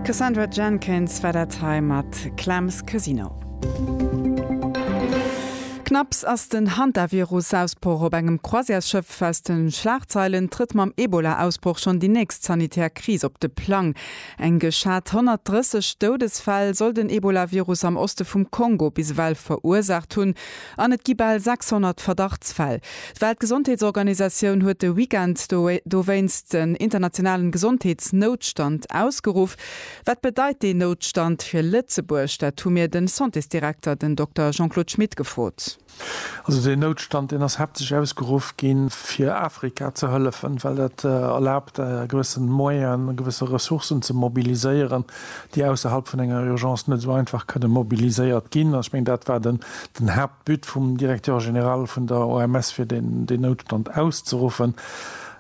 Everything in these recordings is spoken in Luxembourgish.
Cassandra Jenkins war dat hei mat Clem's Casino. Knapps ass den Hantavirus-Ausbroch op engem Croisièresschëff aus de Schlagzeilen, trëtt mam Ebola-Ausbroch schonn déi nächst sanitär Kris op de Plang. Eng geschat 130 Doudesfäll soll den Ebola-Virus am Oste vum Kongo bis ewell verursaacht hunn. An et gi bal 600 Verdachtsfäll. D'Weltgesondheetsorganisatioun huet de Weekend dowéinst den internationalen Gesondheetsnoutstand ausgeruff. Wat bedeit deen Noutstand fir Lëtzebuerg? Dat hu mir den Santésdirekter, den Dokter Jean-Claude Schmit gefrot. Also deen Noutstand, deen ass haaptsächlech ausgeruff ginn, fir Afrika ze hëllefen, well dat erlaabt, gewëssen Moyenen, gewëssen Ressourcen ze mobiliséieren, déi ausserhalb vun enger Urgence net esou einfach kënne mobiliséiert ginn. Ech mengen, dat war den Haaptbut vum Directeur général vun der OMS, fir deen Noutstand auszeruffen.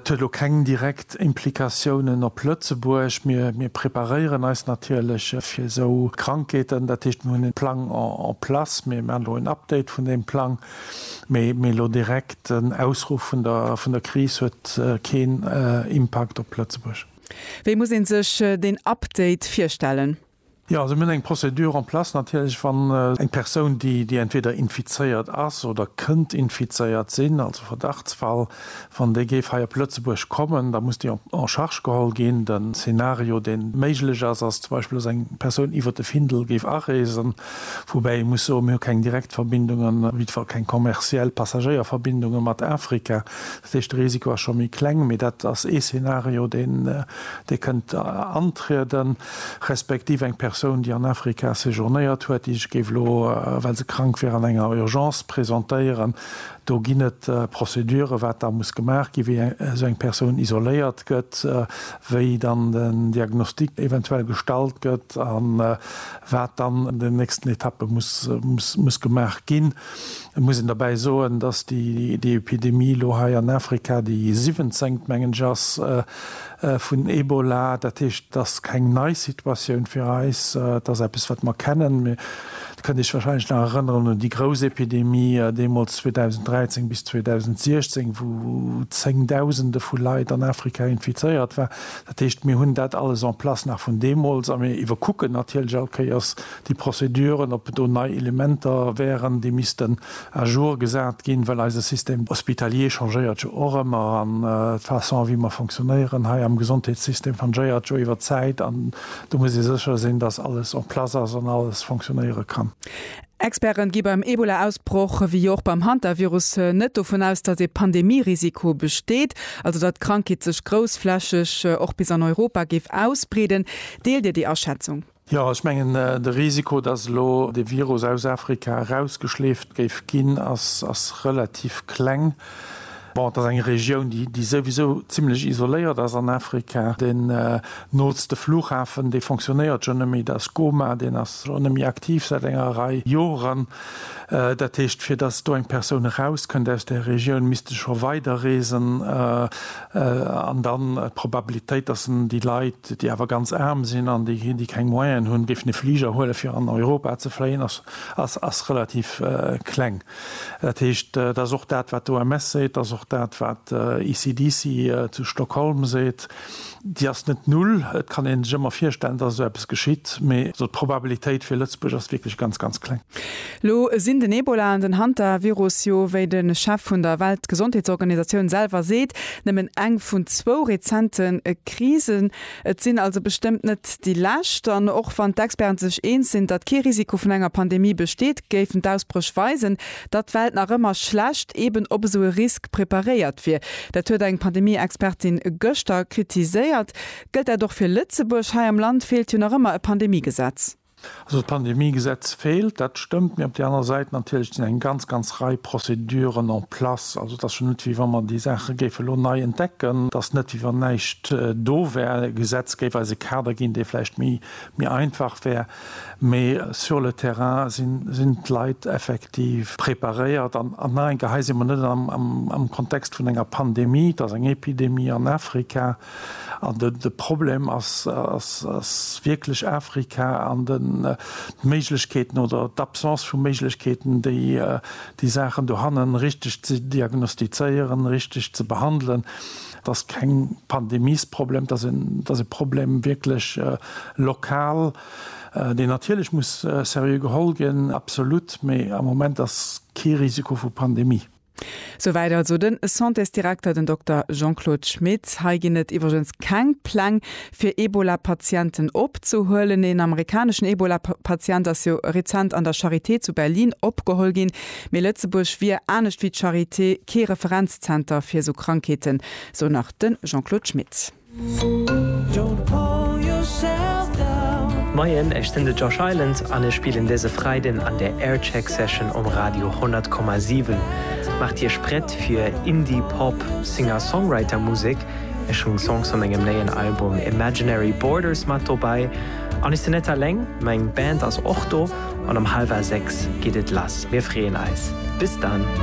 Et huet elo keng direkt Implikatiounen op Lëtzebuerg. Mir preparéieren eis natierlech fir esou Krankheeten. Dat heescht, mir hunn e Plang en place. Mir maachen elo en Update vun deem Plang. Mee elo direkt den Ausruff vun der Kris huet keen Impakt op Lëtzebuerg. Wéi muss een sech deen Update virstellen? Jo, also mir hunn eng Procédure en place. Natierlech, wann eng Persoun, déi, déi entweder infizéiert ass oder kënnt infizéiert sinn, also Verdachtsfall, wann déi géif hei op Lëtzebuerg kommen, da muss déi en charge geholl ginn. De Szenario, deen méiglech ass, ass zum Beispill, dass eng Persoun iwwert de Findel géif areesen, woubäi ee muss soen, mir hu keng direkt Verbindungen, op jiddwer keng kommerziell Passagéierverbindungen mat Afrika, Dat heescht, de Risiko ass scho méi kleng, mee dat ass ee Szenario, dee kënnt antrieden, respektiv eng Persoun, déi an Afrika séjournéiert huet, déi sech géif elo, well se krank wier, an enger Urgence presentéieren. Do ginn et Prozeduren, wat da muss gemaach ginn, wéi esou eng Persoun isoléiert gëtt, wéi dann den Diagnostic eventuell gestallt gëtt a wat dann an den nächsten Etappe muss gemaach ginn. Et muss een derbäi soen, dass déi Epidemie elo hei an Afrika déi siwwenzéngt, mengen ech, ass vun Ebola. Dat heescht, et ass keng nei Situatioun fir eis. Et ass eppes, wat mer kennen. Mir kënnt Iech warscheinlech nach erënneren un déi grouss Epidemie deemools 2013 bis 2016, wou Zéngdausende vu Leit an Afrika infizéiert waren. Dat heescht, mir hunn dat alles en place nach vun deemools a mir iwwerkucken natierlech all Kéiers déi Prozeduren, ob do nei Elementer wären, déi missten à jour gesat ginn, well eise Système hospitalier changéiert jo och ëmmer an d'Façon, wéi mer fonctionnéieren hei am Gesondheetssystem, changéiert jo iwwert d'Zäit an do muss ee sécher sinn, dass alles en place ass an alles fonctionnéiere kann. Experte gi beim Ebola-Ausbroch, wéi jo och beim Hantavirus, net dovun aus, dass ee Pandemie-Risiko besteet, also datt d'Krankheet sech groussflächeg och bis an Europa géif ausbreeden. Deelt Dir déi Aschätzung? Jo, ech mengen, de Risiko, datt elo de Virus aus Afrika erausgeschleeft géif ginn, ass relativ kleng. Bon, et ass eng Regioun, déi souwisou zimlech isoléiert ass an Afrika. Deen nootste Flughafen, dee fonctionnéiert schonn net méi, dat ass Goma. Deen ass och net méi aktiv säit enger Rei Joren. Dat heescht, fir datt do eng Persoun erauskënnt aus där Regioun, misst e scho weiderreesen. An dann d'Probabilitéit, dass en déi Leit, déi awer ganz aarm sinn an déi keng Moyenen hunn, géifen e Fliger huelen, fir an Europa ze fléien, ass relativ kleng. Dat heescht, dat ass och dat, wat d'OMS seet, dat ass och dat, wat ECDC zu Stockholm seet, Déi ass net null. Et kann ee sech ëmmer virstellen, dass esou eppes geschitt, mee d'Probabilitéit fir Lëtzebuerg ass wierklech ganz, ganz kleng. Lo sinn den Ebola an den Hantavirus jo, wéi de Chef vun der Weltgesondheetsorganisatioun selwer seet, nëmmen eng vun zwou rezente Krisen. Et sinn also bestëmmt net déi lescht. An och wann d'Experte sech eens sinn, datt kee Risiko vun enger Pandemie besteet, géifen d'Ausbréch weisen, datt d'Welt nach ëmmer schlecht eben op esou e Risk preparéiert wier. Dat huet eng Pandemie-Expertin gëschter kritiséiert. Gëllt dat och fir Lëtzebuerg? Hei am Land feelt jo nach ëmmer e Pandemiegesetz. Also d'Pandemiegesetz feelt, dat stëmmt, mee op där anerer Säit natierlech sinn eng ganz, ganz Rei Prozeduren en place. Also et ass jo net, wéi wa mer déi Saache géife lo nei entdecken. Et ass net, wéi wann näischt do wär. D'Gesetz géif eis e Kader ginn, dee vläicht méi einfach wär, mee sur le terrain sinn d'Leit effektiv preparéiert. An nach eng Kéier, hei si mer net am Kontext vun enger Pandemie, et ass eng Epidemie an Afrika. An de Problem ass wierklech Afrika an d'Méiglechkeeten oder d'Absence vu Méiglechkeeten, déi Saachen dohannen richteg ze diagnostizéieren, richteg ze behandelen. Et ass keng Pandemiesproblem, et ass e Problem wierklech lokal, deen natierlech muss seriö geholl ginn, absolut, mee am Moment ass kee Risiko vu Pandemie. Souwäit also den Santésdirekter, den Dokter Jean-Claude Schmit. Hei ginn et iwwregens keng Pläng, fir Ebola-Patienten opzehuelen. Een amerikaneschen Ebola-Patient ass jo rezent an der Charité zu Berlin opgeholl ginn. Mee Lëtzebuerg wier, anescht wéi d'Charité, kee Referenzzenter fir esou Krankheeten, sou nach de Jean-Claude Schmit. Moien, ech sinn de Josh Island an ech spillen dëse Freiden an der Aircheck Session um Radio 100,7. Maacht Iech prett fir Indie Pop Singer-Songwriter Musek. Ech hunn Songs vu mengem néien Album Imaginary Borders mat dobäi an ech sinn net aleng, meng Band ass och do. An um hallwer 6 geet et lass, mir freeën eis. Bis dann!